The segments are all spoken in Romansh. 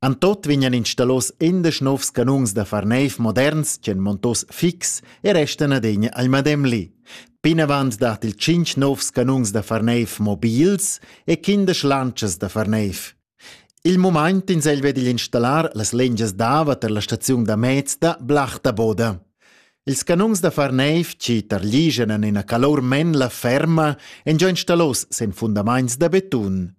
En tot vegnan installos indesch novs canons da far neiv moderns ch'en montos fix e restan adegna ai madem li. Pinavant dat il tschinch novs canons da far neiv mobils e quindesch lantschas da far neiv. Il moment ins el ved igl installar las lengias d'ava tar la staziun da mez da Blachta Boda. Ils canons da far neiv ci tarligen en ina calor men la ferma en già installos sen fundamaints da betun.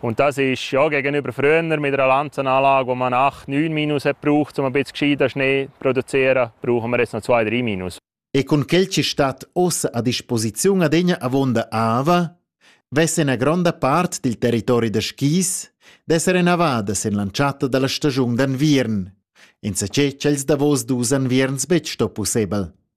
Und das ist ja gegenüber früher mit einer Lanzenanlage, wo man 8, 9 Minus hat braucht, um ein bisschen gescheiter Schnee zu produzieren, brauchen wir jetzt noch 2, 3 Minus. E con quel ci stat ossa a disposiziun adegna avonda Ava, vessen a gronda part del territori da skis d'essere navadas en l'antschatta dalla stagiun d'anviern, in sace ch'els davos dus anvierns betg sto possibel.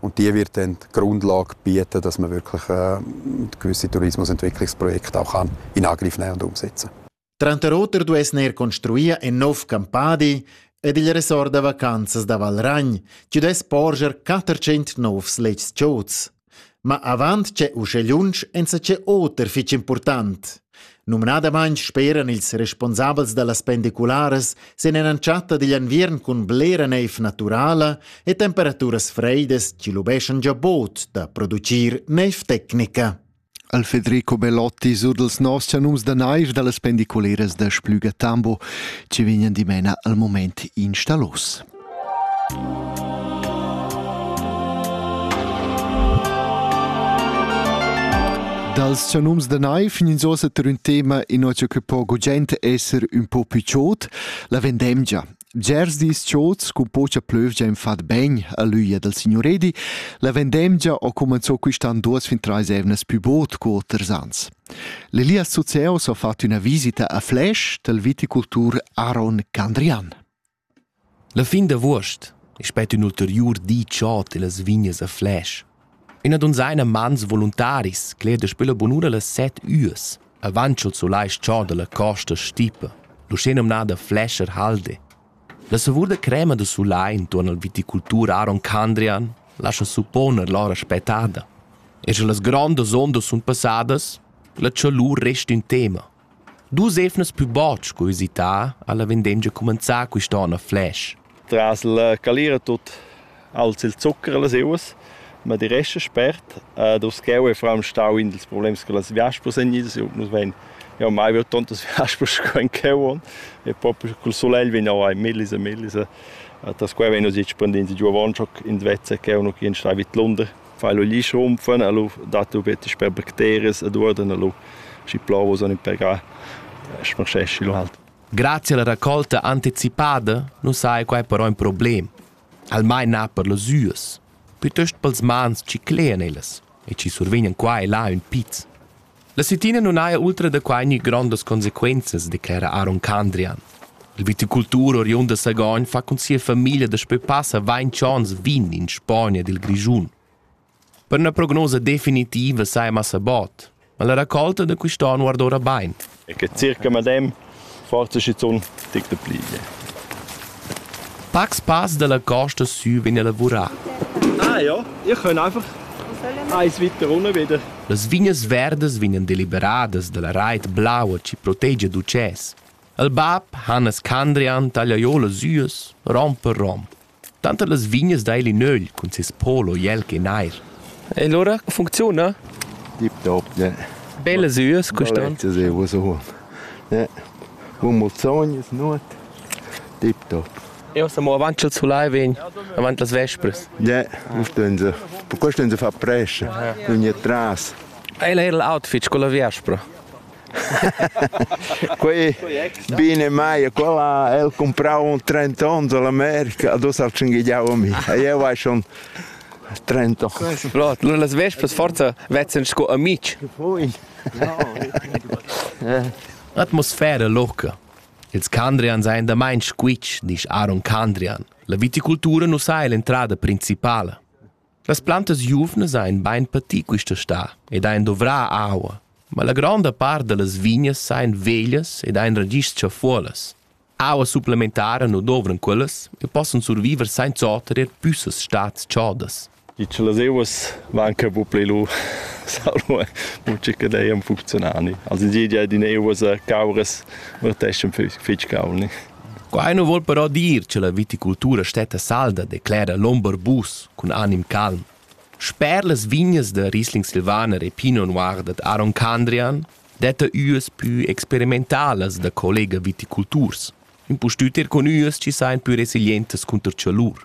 Und die wird dann die Grundlage bieten, dass man wirklich äh, gewisse Tourismusentwicklungsprojekte auch kann in Angriff nehmen und umsetzen kann. Tranter oter duess neir construir ein nov campadi ed il resort da vacanzas da Valragn, ci dess porger 400 novs lets chots. Ma avant c'è usce lunsch ensa c'è oter fich important. Numnadamain speran ils responsabels da las pendicularas sin en'entschatta digl enviern cun blera neiv naturala e temperaturas freidas chi lubeschan già bod da producir neiv tecnica. Al Federico Bellotti sur dels noss chanums da naiv da las pendiculeras da Splüga Tambo, ci vignan dimena al moment instalos. Dals sanums da naiv fin ins ossa tar ün tema inozia che po gugent esser ün po più chod, la vendemgia. Gers dis chod scu pocha plövgia in fat ben a l'üia dal signor Edi, la vendemgia ho cumanzò quist'an duos fin trais evnas più bod co oters ans. L'Elias Zuzeos ha fatto üna visita a Flash dal viticultur Aaron Candrian. La fin d'avuost es spet ün ulteriur di chod illas vignas a Fläsch. Üna dunzaina mans voluntaris cler daspö la bunura las set üas avant cha'l sulais chod da la costa stipa, l'uschenumnada Fläscher Halde. La savur da crema da sulai intuorn al viticultur Aaron Candrian lascha supponer l'ora spettada. E scha las grondas ondas sun passadas, la chalur resta ün tema, Dus evnas pü bod sco üsità ha la vendengia cumanzà quist'on a Fläsch. Tras la calira tut alza il zucker a las euas, ma die resta spert. Ed uschè eu fram stau in dels problems che las viaspas èn idas, eu nus vain jau mai veu tantas viaspas sco in cheu on e propi col sulegl vegn jau ai millis e millis e tas quai vegn nus expandins giu avant in vezza che eu nu chi in stai vid Lunder fai lu gli schunfen a lu dat lu betg per bacterias ed uorden a lu schi plovo son impegar smascheschi lu halt Grazie alla raccolta anticipada nu saja quai però in problem, almain na per las üas, pütöst pels mans chi clean ellas e chi survegnan qua e là ün piz. La Settina nun haja ultra da quai gnü grondas consequenzas, declera Aaron Candrian. Il viticultur oriund da Sagogn fa cun sia famiglia daspö passa vainch ons vin in Spagna ed il Grischun. Per üna prognosa definitiva saja massa bod, ma la racolta da quist'on guarda ora bain. E che circa medem forza schizun tic da pliglia. Pacs pass dalla costa sü vegn a lavurar. Ah ja, ich kann einfach eins weiter runter wieder. Las vignas verdas vegnan deliberadas dalla reit blaua chi protegia d'ucès. Il bab Hannes Candrian taglia jo las üas rom per rom. Tanter las vignas dail in ögl cun ses polo jelg e nair. E lura funcziuna? Tip top, ne. Bellas üas custan. Das ist was so. Ne. Un muzzogn ist not. Tip top. Io siamo avanti al sulai vegn, avanti las vespres. Ne, stehen sie. Per questo stehen sie fa presce, non è tras. Ela era l'outfit con la vespra. quei bine mai quella el comprau un 30 ons alla America du sa tschingigliau a mi e io vai schon 30 ans. Las vespas forza vezzan sco amici. Atmosfera loca. Ils Candrian seien da mein squitsch, disch Aaron Candrian. La viticultura nu sai l'entrada principala. Las plantas giuvnas ein bein pati quista sta ed ein dovrà aua, ma la gronda part dallas vignas ein veglias ed ein ragischs chafuolas. Aua supplementara nu dovran quellas e possan surviver sainza oter er püssas stats chodas. I che las euas van che bu pli lu salvo mucca dei am funzionani. Also die die den euas cauras verteschen fitch gauni. Quai nu voul però dir cha la viticultura stetta salda, declera l'ombarbus cun anim calm. Sper las vignas da Riesling Silvaner e Pinot Noir dad Aaron Candrian detta üas pü experimentalas da collega viticulturs, impustüt er cun üas chi sajan pü resilientas cunter chalur.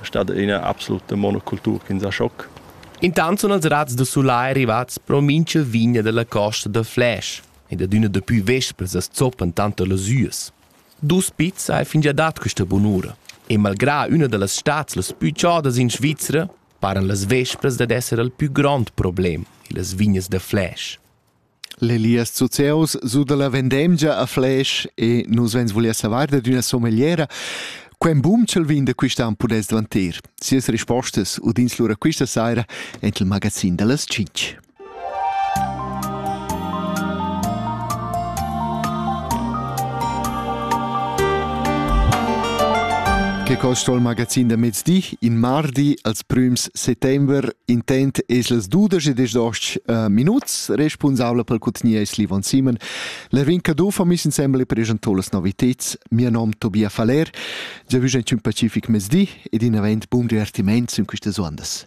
è stata ina absoluta monocultura che ha schoc. Intant sono els razs da sulai arrivats pro mincha vigna della costa da Flash ed adüna dapü vespers as zoppan tanter las üas. Dus pizs ha fingià dat questa bunura e malgrà üna da las stats las pü chodas in Svizra paran las vespras dad esser il pü grond problem illas vignas da Flash. L'Elias Zuzeus su dalla vendemgia a Fläsch e nus vegns vulia savar dad üna somegliera Quem bumchel vin da quist'an pudess dvantir? Sias rispostas udins lura quista saira en il magazin da las 5. Che costa il magazin da mezdi? in mardi als prüms settember intent es las dudesch e dezoch uh, minuts responsabla per cutgnia es Livon Simon. La Rinca Dufa mis insembel preschantò las noviteds. Mia nom Tobia Faler, già vüsch ein un pacific mezdi ed in avent bun divertiment in quistas ondas.